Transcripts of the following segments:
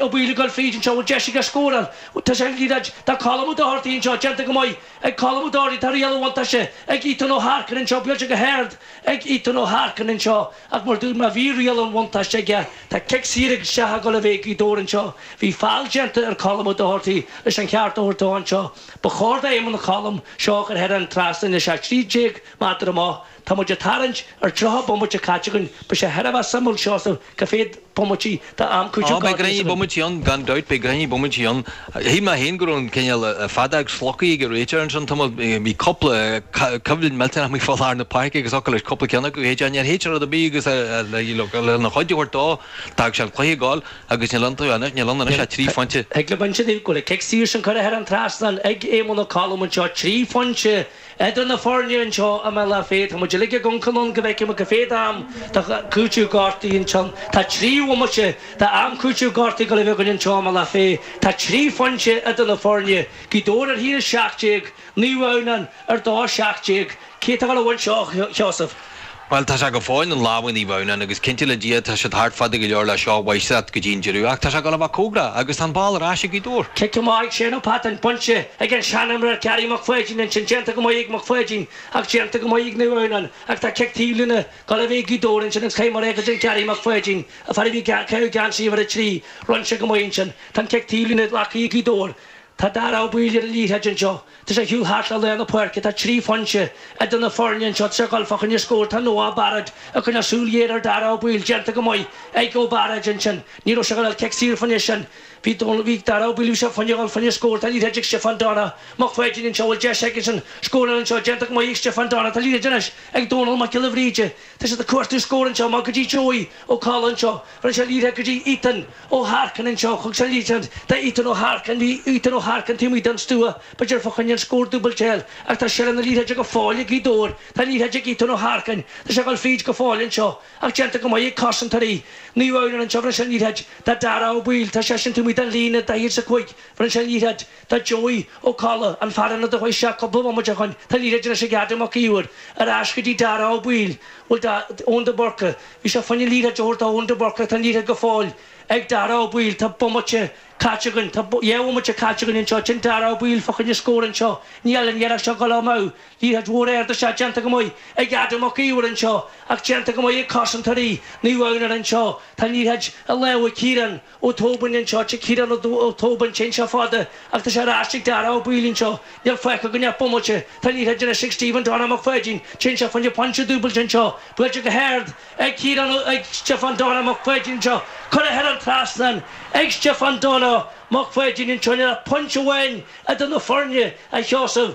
Ó Baoill ag dul fríd anseo, bhfuil deis aige scóráil? Tá sé ag liathróid. Tá Colm Ó Dochartaigh anseo, déanta go maith ag Colm Ó Dochartaigh. Tá riail an bhuntáiste ag Ethan Ó hArcain anseo, buailte go hard ag Ethan Ó hArcain anseo ach mar a dúirt mé bhí riail an bhuntáiste aige, tá cic saor isteach ag dul ag Gaoth Dobhair anseo. Bhí feall déanta ar Colm Ó Dochartaigh leis an cheart a thabhairt dó anseo. Ba chóir do Éamonn Ó Colaim seo a chur thar an trasnán, tá sé 13 méadar amach. Tá muid ag tarraingt ar tríocha bomaite caite againn. Beidh sé thar a bheith suimiúil Seosamh cá mhéad bomaite d'am cúitimh Ó, beidh gráinnín bomaití ann, gan dabht, beidh gráinnín bomaití ann. Shíl mé féin go raibh an cineál fada agus slocaí ag an réiteoir ansin an t-am a bhí cúpla coimhlint millteanach faoi lár na páirce agus focal le cúpla ceann acu. Théid, níor théid sé rud ar bith agus lena cheart a thabhairt dó, d'fhág sé an cluiche ag dul agus níl iontu anois, níl ann anois ach trí phointe. Thig liom a insint go bhfuil an cic saor sin curtha thar an trasnán ag Éamonn Ó Colaim anseo, trí phointe. Idir na foirne anseo i mBealach Féich, tá muid uilig ag amharc anonn go bhfeicfimid cá mhéad am de chúiteamh gortuithe anseo. Tá trí bhomaite d'am chúiteamh gortuithe ag dul a bheith againn anseo i mBealach Féich. Tá trí phointe idir na foirne, Gaoth Dobhair ar 1-17, Naomh Adhamhnáin ar 2-17 Cé atá ag dul a bhaint seo, Sheosamh? Bhuel, tá sé go fóill in lámha Naomh Adhamhnáin agus cinnte le Dia tá siad thart fada go leor le seo a bhaint as go dtí an deireadh ach tá sé ag dul a bheith cóngarach agus tá an ball ar ais ag Gaoth Dobhair. Cic go maith ag Shaun Patton, bainte ag an seanimreoir Gary Mac Phaidín, ansin déanta go maith ag Mac Phaidín ach déanta go maith ag Naomh Adhamhnáin ach tá cic taobh líne ag dul ag Gaoth Dobhair ansin agus caithfidh mé a rá agus Gary Mac Phaidín, a fear a bhí caoga i gceann trí uimhir a trí, rinne go maith ansin. Tá an cic taobh líne glactha ag Gaoth Dobhair. Tá Darragh Ó Baoill ar an liathróid anseo. Tá sé ag siúl thart le lár na páirce, tá trí phointe idir na foirne anseo tá sé ag dul fá choinne scór, tá Noah Barrett ag coinneáil súil ghéar ar Dara Ó Baoill, déanta go maith ag Noah Barrett ansin, ní raibh sé ag dul a fháil cic saor fá choinne sin, bhí Dónal, bhí Dara Ó Baoill, bhí sé ag smaoineamh a dhul fá choinne scór, tá liathróid ag Stiofán Donna Mac Pháidín anseo, bhfuil deis aigesean scóráil anseo, déanta go maith ag Stiofán Donna, tá liathróid anois ag Dónal Mac Giolla Bhríde, Tá siad ag cuartú scór anseo, amach go dtí Joey Ó Colla anseo, rinne sé liathróid go dtí Ethan Ó hArcain anseo, thug sé liathróid d'Ethan Ó hArcain, bhí Ethan Ó hArcain taobh amuigh den stua, b'fhéidir fá choinne an scór dúbailte eile ach tá seilbh na liathróide go fóill ag Gaoth Dobhair, tá liathróid ag Ethan Ó hArcain, tá sé ag dul fríd go fóill anseo ach déanta go maith ag cosantóirí Naomh Adhamhnáin anseo, rinne sé liathróid do Dara Ó Baoill, tá seisean taobh amuigh den líne, 45, rinne sé liathróid. do Joey Ó Colla, an fear a tugadh isteach cúpla bhomaite ó shoin, tá liathróid anois ag Adam Mac Íomhair, ar ais go dtí Darragh Ó Baoill, bhuel dá, Eoin de Burca, bhí sé ag smaoineamh liathróid a thabhairt do Eoin de Burca ach tá an liathróid go fóill ag Darragh Ó Baoill, tá bomaite caite againn, tá dhá bhomaite caite againn anseo, sin Darragh Ó Baoill fá choinne scór anseo, níl an iarracht seo ag dul amú, liathróid mhór ard isteach déanta go maith ag Adam Mac Íomhair anseo ach déanta go maith ag cosantóirí Naomh Adhamhnáin anseo, tá an liathróid i lámha Kieran, Ó Tóibín anseo tá Ciarán Ó Tóibín tá anseo fada agus tá sé ar ais ag Dáire Ó Baoill anseo níl fágtha againn ach bomaite tá an liathróid ar ais ag Stiofán Donna Mac Pháidín tá anseo fá choinne pointe dúbailte anseo buailte go hard ag Ciarán Ó ag Stiofán Donna Mac Pháidín anseo curtha thar an trasnán ag Stiofán Donna Mac Pháidín anseo níl ach pointe amháin idir na foirne a Sheosaimh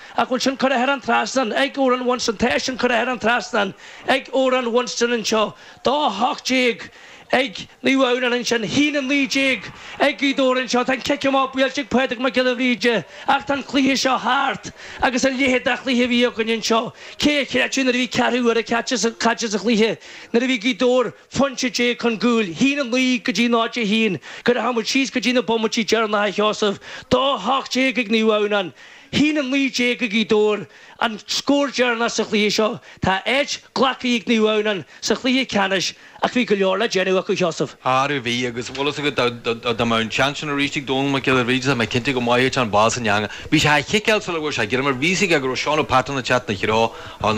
Ach bhfuil sin curtha thar an trasnán ag Oran Winston? Tá sin curtha thar an trasnán ag Oran Winston anseo. 2-18 ag Naomh Adhamhnáin ansin, 1-19 ag Gaoth Dobhair anseo. Tá an cic amach buailte ag Pádraig Mac Giolla Bhríde ach tá an cluiche seo thart agus a leithéid de chluiche a bhí againn anseo. Cé a chreidfeadh nuair a bhí ceathrú uaire caite sa chluiche nuair a bhí Gaoth Dobhair aon phointe déag chun gcúil, 1-9 go dtí 0-1, go rachadh muid síos go dtí na bomaití deireanacha, a Sheosaimh? 2-18 ag Naomh Adhamhnáin, 1-19 ag Gaoth Dobhair an scór deireanach sa chluiche seo. Tá áit glactha ag Naomh Adhamhnáin sa chluiche ceannais ach bhí go leor le déanamh acu, a Sheosaimh. Arú, bhí, agus bhfuil fhios agat, dá mbeadh an seans sin arís ag Dónal Mac Giolla Bhríde, tá mé cinnte go mbeadh an ball san eangach. Bhí sé á chiceáil sula bhfuair sé greim air, bhí 's aige go raibh Shaun Patton ina threo, an